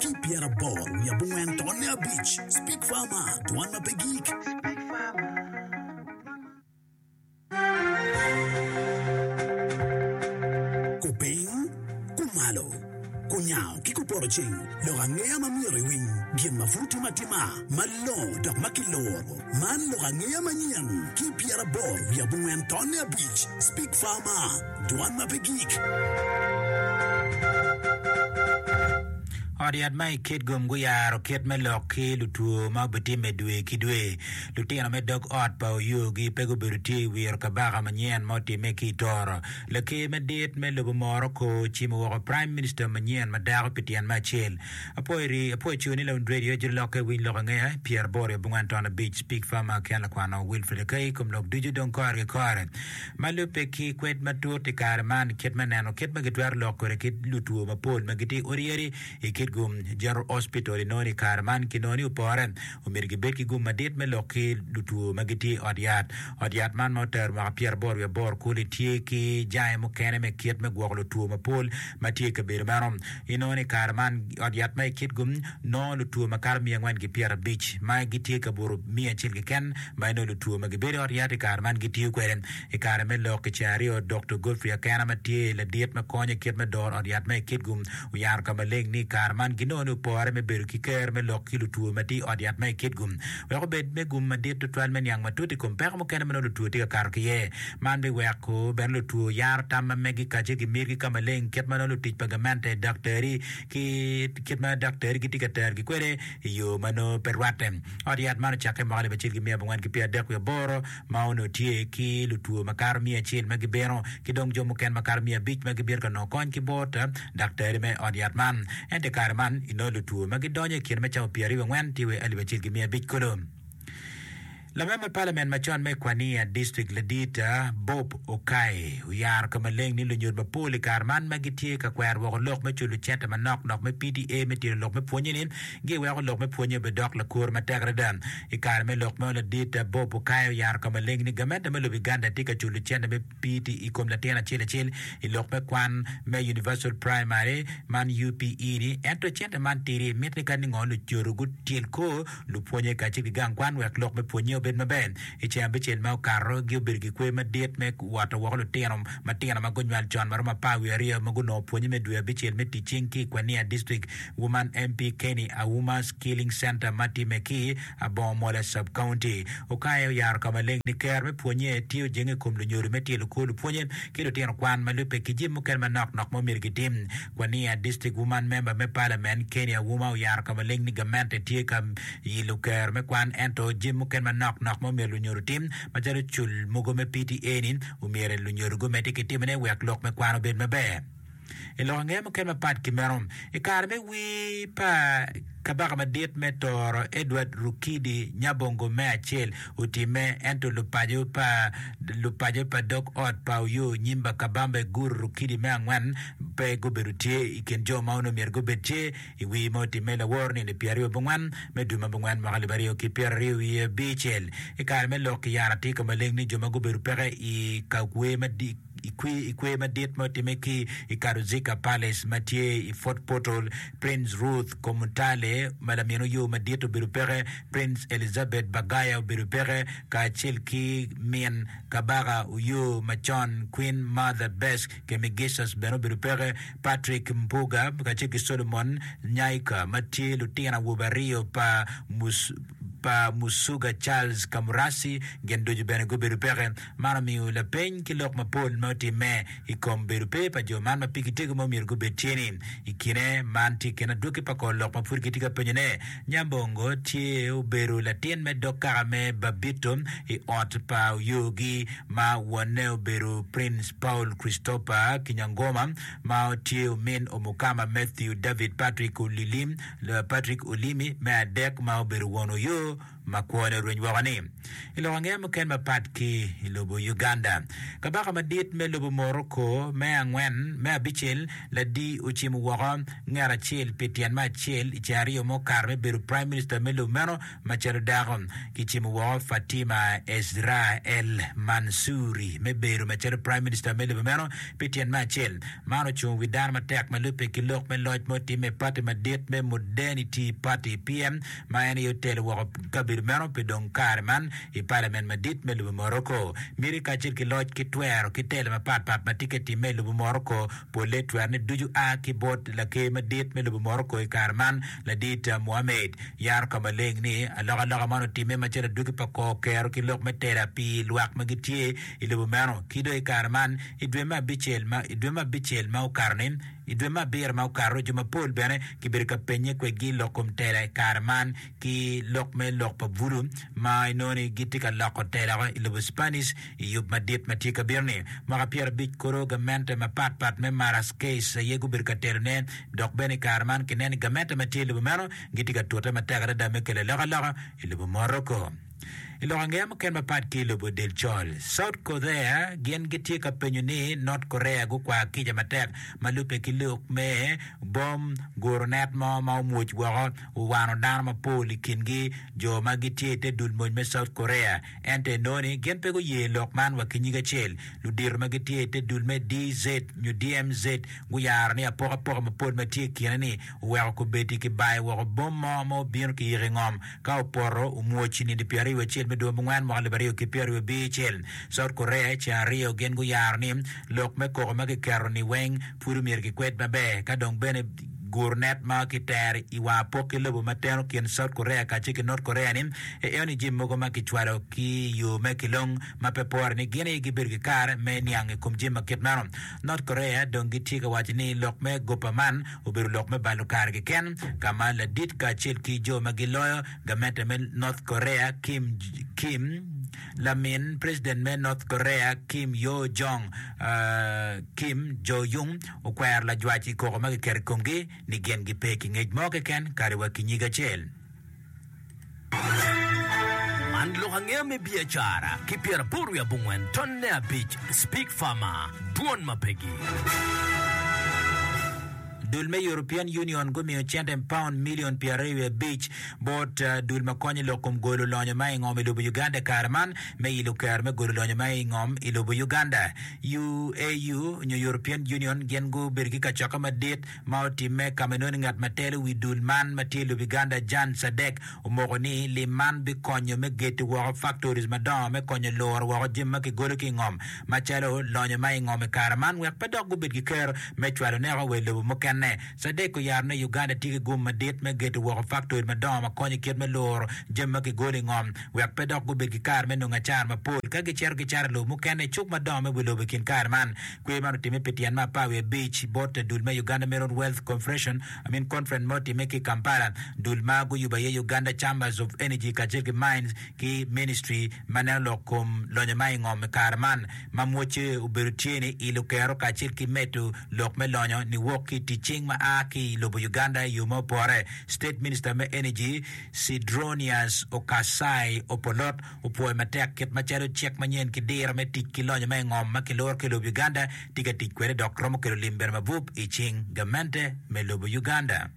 ki pyeraboro wiye abongwen to ne abic speak farmer dwan ma pe gik kupiny kumalo kunyango ki kuporo ceng lok angeya ma myero iwiny gin ma pud tim atima ma longo dok ma kiloro man lok angeya manyen ki pyeraboro wiye abongwen to ne abic speak farmer Dwan ma pe gik. Ot yat ma i Kitgum guyaro kit me lok ki lutwo ma obitimme dwe ki dwe. Lutino me dog ot pa Oyoogi pe gubedo tye i wiro kabaka manyen ma otimme ki i Toro. Laker madit me lobo moro ko ocimo woko Prime Minister manyen ma dako pi tyen me acel. Apwoyi apwoyi co ni Lawund Radio Jiri Lokke Winy Lok Angeya pyeraboro i abongwen ton abic Pig Farmer Ken Lakwano Wilfred Akai Kom Lok Ducu Dong Korgi Kore. Ma lubbe ki kwed matut i kare man, kit me neno kit ma gitwero lok kwede kit lutwo mapol ma gitye odi yadi i kit gum General Hospital inongo ni kare man ki nongo ni opore, omyero gibed ki gum madit me lok ki lutwo ma gitye i ot yat. Ot yat man ma otero mwaka pyera aboro wiye bor kuli tye ki jange mukene me kit me gwoko lutwo mapol ma tye i kabedo meno. Inongo ni i kare man, ot yat ma i Kitgum nongo lutwo makato miya angwen ki pyerabic ma gitye ka buto miya acel keken ma inongo lutwo ma gibedo i ot yat i kare man gitiyo kwede. I kare me lok i ceng aryo, Doktor Godfrey Akena ma tye ladit ma konyo i kit me doro ot yat ma i Kitgum oyaro ka maleng ni i kare man ginongo ni opore me bedo ki ker me lok ki lutwo ma tye i ot yat ma i Kitgum wek obed me gum madit tutwal me niang matut i kom peko mukene ma nongo lutwo tye ka kato ki iye. Man biweko bene lutwo yaro tam ma megi kacce ki mitgi ka maleng kit ma nongo lutic pa gamente, daktari, ki kit ma daktari gitye ka terogi kwede i yo ma nongo pe rwatte. Ot yat man ocakke mwaka alip acel ki miya abongwen ki pyera adek wiye aboro ma onongo tye ki lutwo makato miya acel ma gibino ki dong jo mukene makato miya abic ma gibino ka nongo kony ki bot daktari me ot yat man. Ento i kare man, inongo lutwo ma gidonyo i kine me cawa pyera aryo ki angwen tye wa i alip acel ki miya abic kulu. Langa me Palament macon me Kwania District Ladit Bob Okay oyaro ka maleng ni lunyut mapol i kare man ma gitye ka kwero woko lok me culo cente manok nok me PTA me tito lok me pwonye-ni giweko lok me pwonye obedok lakuru matek adada. I kare me lok meno Ladit Bob Okay oyaro ka maleng ni gamente me lobo Uganda tye ka culo cente me PTE kom latin acel acel i lok me kwan me Universal Primary man, UPE, ni ento cente man tidi mit ni kadi ngo lucodo gutyel kor lupwonye kacel ki gang kwan wek lok me pwonye obed maber. I ceng abicel ma okato, gi obedo ki kwe madit me woto woko lutino matino ma gunywal con ma romo apar wiye aryo ma gunongo pwonye me dwe abicel me ticing ki i Kwania District Woman MP Kenny Auma Skilling Center ma time ki Abongo Mola Sub-County okayo oyaro ka maleng ni Ker me pwonye tye ojenge i kom lunyodo me tyelo kwo lupwonye ki lutino kwan ma lubbe ki jami mukene manok nok ma omyero gitim. Kwania District Wuman Memba me Palament Kenny Auma oyaro ka maleng ni gamente tye ka yilo Ker me kwan ento jami mukene manok nok ma omyero lunyodo otim macalo cul mogo me PTA-ni omyero lunyodo gumedde ki timone wek lok me kwan obed maber. I lok angeya mukene mapat ki meno, i kare me wir pa Kabaka Madit me Toro, Edward Rukidi Nyabongo me Acel otimme, ento lupaco pa lupaco pa dog ot pa Oyoo Nyimba Kabamba Iguru Rukidi me Angwen pe gubedo tye i kin jo ma onongo myero gubed tye i wir ma otimme laworo nino pi aryo bongwen me dwe ma bongwen mwaka alip aryo ki pyeraryo wiye abicel. I kare me lok ki yara tye ka maleng ni jo ma gubedo peke i ka wer madit i kwer madit ma otimme ki i Karuziga Palace ma tye i Fort Portal, Prince Ruth Komutale ma lamin Oyoo Madit obedo peke, Prince Elizabeth Bagaya obedo peke, kacel ki min Kabaka Oyoo macon Queen Martha Best Kemigiscus bene obedo peke, Patrick Mpuuga kacel ki Solomon Nyaika ma tye lutino awobe aryo pa Musuga Charles Kamurasi gin ducu bene gubedo peke. Man omiyo lapeny ki lok mapol ma otimme i kom bedo pe pa jo man ma pigi tego ma omyero gubed tye ni, I kine man tye kene adwoki pa kor lok ma pud gitye ka penyone. Nyambongo tye obedo latin me dog kaka me Babito i ot pa Oyogi ma wonne obedo Prince Paul Christopher Kinyangoma ma tye omin Omukama Mathew David Patrick Olilimi, Patrick Olimi, me adek ma obedo won Oyoo. ma kwone orweny woko ni, I lok angeya muken mapat ki i lobo Uganda, kabaka madit me lobo Morocco me angwen, me abicel, Ladi ocimo woko nget acel pi tyen me acel i cae aryo mukato me bedo Prime Minister me lobo meno macalo dako. Kicimo woko Fatima Ezra El Mansouri me bedo macalo Prime Minister me lobo meno pi tyen me acel. Man ocungo wi dano matek ma lubbe ki lok me loc ma otimme i pati madit me Modernity Party, PM, ma en aye otelo woko kabedo meno pi dong kare man i Palamen Madit me lobo Morocco. Miti kacel ki loc ki twero ki telo mapat pat ma tye ka timme i lobo Morocco polle twero ni ducu a ki bot Laker Madit me lobo Morocco i kare man, Ladit Mohammed. Yaro ka maleng ni alokaloka man otimme macalo adwogi pa kor kero ki lok me tela pi lwak ma gitye i lobo meno. Ki dong i kare man, i dwe me abicel ma okato ni, I dwe me abiro ma okato, jo mapol bene kibedo ka pennye kwedgi lok kom tela i kare man ki lok me lok pa Vudu ma inongo ni gitye ka loko tela i lobo Spanish i yub madit ma tye ka bino-ni. Mwaka pyera abic kulu, gamente mapat pat me Marasquez aye gubedo ka telone, dok bene i kare man kineno ni gamente ma tye i lobo meno gitye ka tute matek adada me kelo alokaloka i lobo Morocco. I lok angeya mukene mapat ki i lobo del col, South Korea gin gitye ka penyo ni North Korea gukwar kica matek ma lubbe ki lok me bom guro net mo ma omwoc woko owano dano mapol i kingi jo ma gitye ite dul mony me South Korea ento enoni gin pe guye lok man wa kinyige acel. Ludito ma gitye ite dul me DZ nyo DMZ guyaro ni apokapoka mapol ma tye ikine ni oweko kubeddi kibayo woko bom mo ma obino kiyiko ingom ka opoto omwoc i nino pyeraryo acel me dwe mungwen mwaka alip aryo ki pyeraryo abicel. South Korea i ceng aryo gin guyaro ni lok me koko ma kiketo ni weng pud omyero kikwed maber ka dong bene guru net ma ki tero i wang apok ki lobo ma teno kin South Korea kace ki North Korea ni eo ni jim mogo ma kicwalo ki yo me kilong ma pe pore ni gin aye gibedo ki kare me niang i kom jim ma kit meno. North Korea dong gitye ka waco ni lok me gopa man obedo lok me balo kare keken ka ma ladit kacel ki jo ma giloyo gamente me North Korea Kim Kim lamin president me North Korea Kim Yo Jong Kim Jo Yung okwero lajwac i koko ma kiketo i komgi ni gin gipe ki ngec mo keken kadi wa ki nyig acel. Man lok angeya me biacara ki pyeraboro wiye abongwen tonne abic Spig Farmer, Dwon ma pegi. Dul me European Union gumiyo cente paun milion pyeraryo wiye abic bot dul ma konyo i lok kom golo lonyo ma i ngom i lobo Uganda i kare man me ilo kero me golo lonyo ma i ngom i lobo Uganda. UAU nyo European Union gin gubedo ki kacokke madit ma otimme ka ma inongo ni ngat ma telo wi dul man ma tye Lubiganda Jan Sadek omoko ni lim man bikonyo me geto woko factories madongo me konyo luro woko jami ma kigolo ki i ngom macalo lonyo ma i ngom i kare man wek pe dok gubed ki kero me cwalo neko wa i lobo mukene. Sadek oyaro ni Uganda tye ki gum madit me geto woko factory madongo ma konyo i kit me luro jami ma kigolo i ngom wek pe dok gubed ki kare me nongo acara mapol ka gicito gicaro i lobo mukene i cuk madongo me wi lobo i kin kare man. Kwer man otimme pi tyen ma apar wiye abic bot dul me Uganda Meron Wealth Confederation, I mean Conference ma otimme ki Kampala, dul ma guyubo aye Uganda Chambers of Energy kacel ki Mines ki Ministry ma neno lok kom lonyo ma i ngom i kare man ma mwocce obedo tye ni ilo kero kacel ki medo lok me lonyo ni wok ki i tic cing ma a ki i lobo Uganda i yo ma opore. State Minister me Energy Sidronius Okasai Opolot opwoyo matek kit macalo cik manyen ki diro me tic ki lonyo ma i ngom ma kiluro ki lobo Uganda tye ka tic kwede dok romo kelo lim bedo mabup i cing gamente me lobo Uganda.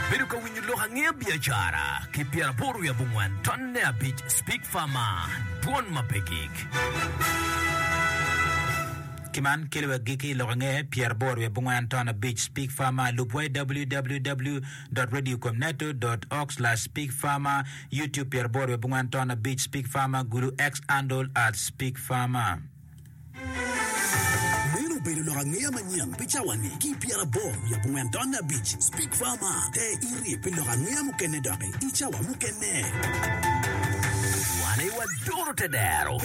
Ibedo ka winyo lok angeya biacara ki pyeraboro wiye abongwen tonne abic Speak Pharma, dwon ma pe gik. Ki man kelo wa giki i lok angeya pyeraboro wiye abongwen tonne abic Speak Pharma, lubwa i www. Radio com neto org slash Speak Pharma. YouTube pyeraboro wiye abongwen ton abic Speak Farmer Gulu X Andol Ads Speak Farmer. Meno obedo lok angeya manyen pi cawa-ni ki pyeraboro wiye abongwen ton abic Speak Farmer. Te iri pi lok angeya mukene doki i cawa mukene. Wane wa doro te dero.